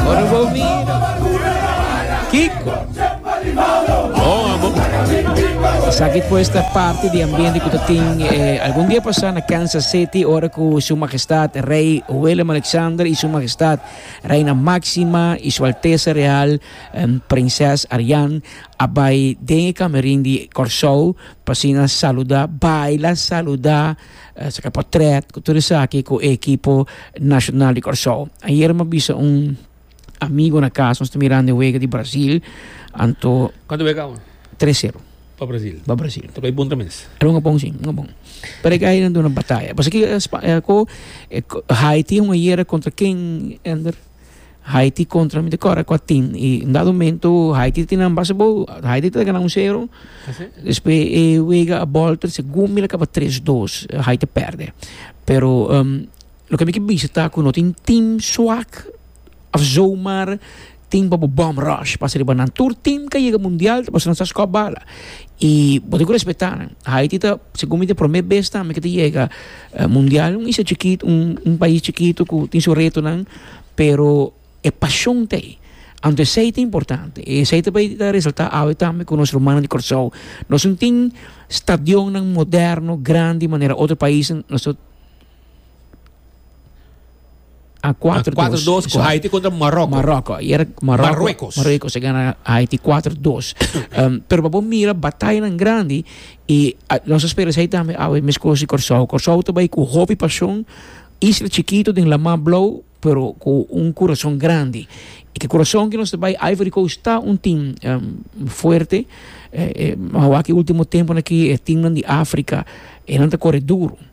Ora bo mira Kiko bon amo. Esaki pues ta parte di ambiente ku ta tin eh, algun dia pasá na Kansas City ora ku Su Majestad Rey Willem Alexander i Su Majestad Reina Máxima i Su Altesa Real em, Prinses Ariane a bai den e kamerin di Kòrsou pa asina saluda, baila, saluda. Esaki ta por trèt ku tur esaki ku e ekipo nashonal di Kòrsou. Ayera mi a bisa un amigu na kas, nos ta mirando e wega di Brazil, anto. Kuantu wega kába? Tres sero. Pa Brazil? Pa Brazil. Tokoi bon ta mes? Era un apon si, un apon. Pero e gaynan duna bataya. Pasobra ki e Spa, e ko, Haiti hunga yera kontra ken, Ender? Haiti kontra mi ta kòrda kua tim i un dado momento Haiti ta tina nan base bo Haiti ta gana un sero despues e wega a bolter segun mi laka pa tres dos Haiti a perde pero loke mi ke bisa ta ku no tin tim swak of zomaar tim pa bo bom rush pasa riba nan tur tim ke yega mundial ta pasa nan sa skop bala i bo tin ku respeta nan Haiti ta segun mi ta prome bes tambe ke ta yega. E mundial un isla chikito un pais chikito ku tin su retonan pero e pashon ta ei anto esei ta importante y esei ta bay ta resalta awe tambe ku nos rumannan di Kòrsou nos no tin stadionnan moderno grandi manera otro paisnan nos ta. A kuater dos. A kuater dos ku Haiti kontra Maroko. Maroko. Yera Maroko. Maroko se gana Haiti kuater dos. Pero pa bo mira batayanan grandi i nos a spera esei tambe awe meskos di Kòrsou. Kòrsou ta bai ku hopi pasion, isla chikitu den laman blou pero ku un kurason grandi. I ki kurason ku nos ta bai Ivory Coast ta un tim fuerte. Awaki ultimo tempunan aki e timnan di Afrika e nan ta kore duru.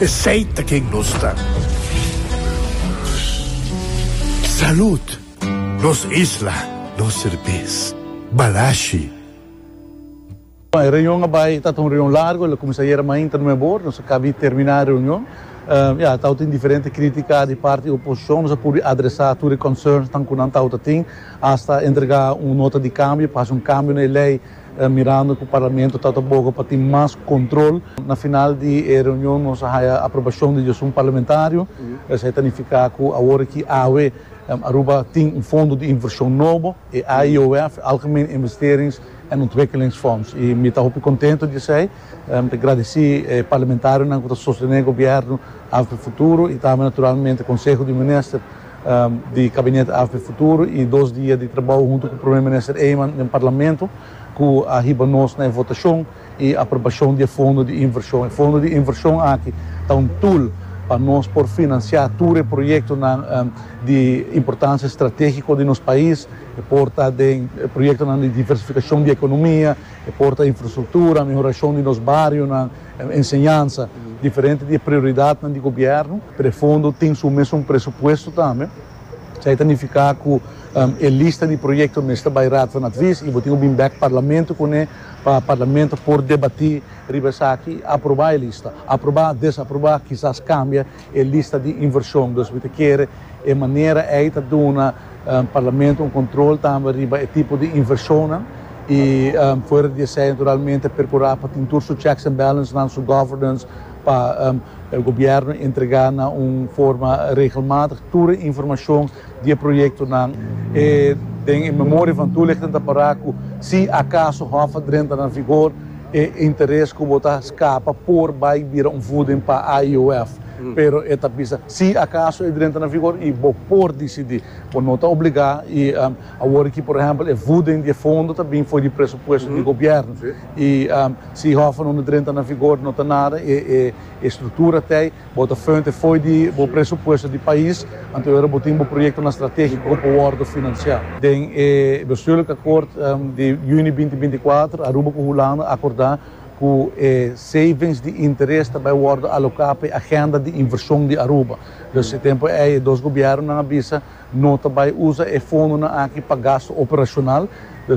Esey ta ken nos ta. Salud. Nos isla, nos serbes. Balashi. E reunion a bai, ta ta un reunion largo, el a cuminsa ayera mainta no mei bor, nos a cabi termina e reunion. Ya, tawata tin diferente critica di parti oposicion, nos a pudi adresa tur e concernsnan cu nan tawata tin, hasta entrega un nota di cambio pa haci un cambio na e ley Mirando cu Parlamento ta ta boga pa tin mas control, na final di e reunion nos a haya aprobacion di dyasun parlamentario. Esei ta nifica cu awor aki awe Aruba tin un fondo di inversion nobo, e AIOF, Algemeen Investerings en Ontwikkelingsfonds, y mi ta hopi contento di esei. Mi ta gradici e parlamentarionan cu ta sostene gobierno Afrofuturo y tambe naturalmente Conseho di Minister. di Kabinet AFP Futuro i dos dia di trabou huntu ku Prome Minister Eman den Parlamento ku a hiba nos na e votashon i aprobashon di e fondo di invershon. E fondo di invershon aki ta un tul pa nos por finansiá tur e proyektonan di importansia stratégiko di nos pais. E por ta den proyektonan di diversifikashon di ekonomia, e por ta infrastruktura, mehorashon di nos barionan, E enseñansa, diferente di e prioridatnan di gobièrnu, pero e fondo tin su mesun presupuesto tambe. Esei ta nifiká ku e lista di proyekto mester bai Raad van Advies i bo tin ku bin bèk Parlamento kuné pa Parlamento por debatí riba esaki i aprobá e lista, aprobá, desaprobá, kisas kambia. e lista di invershon. Dus mi ta kere e manera ei ta duna Parlamento un kontrol tambe riba e tipo di invershonnan i fuera di esei naturalmente perkurá pa tin tur su checks and balansnan, su governance pa el gobièrnu entregá na un forma regelmatig tur e informashon di e proyektonan e den e memoria van toelichting ta para ku si akaso Hof a drenta na vigor e interes ku bo ta skapa por bai bira un voeding pa IOF pero e ta bisa si akaso e drenta na vigor i bo por disidi bo no ta obligá i awor ki por ehèmpel e voeding di e fondo ta bin for di presupuesto di gobièrnu i si Hof a no drenta na vigor no ta nada e struktura tei. Bo ta fuente fo'i di bo presupuesto di pais, anto e ora bo tin bo proyektonan stratégiko ku por wòrdu finansiá. Den e bestuurlik akòord di yüni binti binti kuater, Aruba ku Hulanda a akordá ku e savings di interes ta bai wòrdu aloká pa e agenda di invershon di Aruba. Dus e tempu ei e dos gobièrnunan a bisa no ta bai usa e fondonan aki pa gastu operashonal,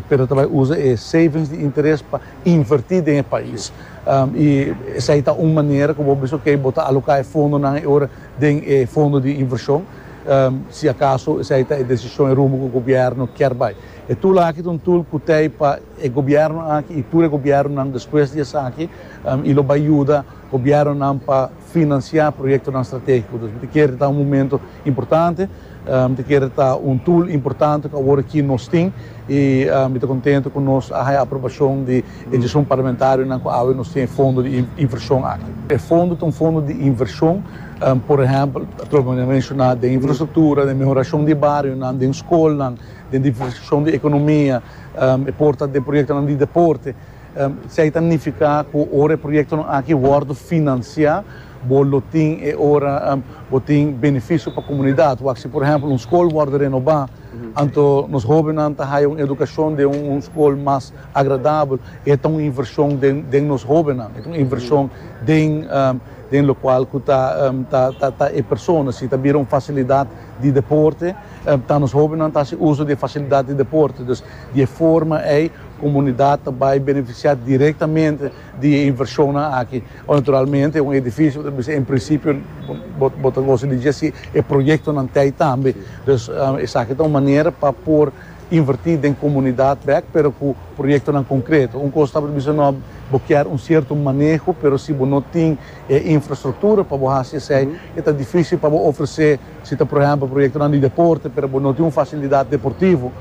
pero ta bai usa e savings di interes pa. invertí den e pais. I esei ta un manera ku bo bisa, oke, bo ta aloká e fondonan e ora den e fondo di invershon, si akaso esei ta e desishon, e rumbo ku gobièrnu kier bai. E tul aki ta un tul ku ta ei pa e gobièrnu aki i tur e gobièrnunan despues di esaki, i lo bai yuda gobièrnunan pa. Finansiá proyektonan strategiko dus mi ta kere ta un momento importante, mi ta kere ta un tool importante ku awor aki nos tin i mi ta kontento ku nos a haña aprobashon di e dishon parlamentarionan ku awe nos tin e fondo di invershon aki. E fondo ta un fondo di invershon, por ehèmpel atrò bo a menshoná den infrastruktura, den mehorashon di barionan, den skolnan, den diversifikashon di ekonomia, e por ta den proyektonan di deporte. Esei ta nifiká ku ora e proyektonan aki wòrdu finansiá, bo lo tin e ora bo tin benefisio pa komunidat. Wak si por ehèmpel un skol wòrdu renobá, anto nos hóbennan ta haya un edukashon den un skol mas agradabel, e ta un invershon den nos hóbennan, e ta un invershon den lokual ku ta ta e persona. Si ta bira un fasilidat di deporte, ta nos hóbennan ta hasi uso di e fasilidat di deporte. Dus di e forma ei. Komunidat ta bai benefisiá direktamente di e invershonnan aki. Naturalmente un edifisio ta bisa en prinsipio bo ta gosa di dje si e proyektonan t'ei tambe. Dus esaki ta un manera pa por invertí den komunidat bèk pero ku proyektonan konkreto. Un kos tabata bisa nò bo kier un sierto maneho pero si bo no tin e infrastruktura pa bo hasi esei e ta difísil pa bo ofresé. Si ta por ehempel proyektonan di deporte pero bo no tin un fasilidat deportivo,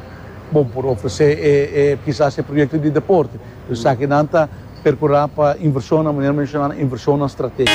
bo por ofresé e kisas e proyekto di deporte. Por esaki nan ta perkurá pa invershonnan, manera mi menshoná, na invershonnan stratéshiko.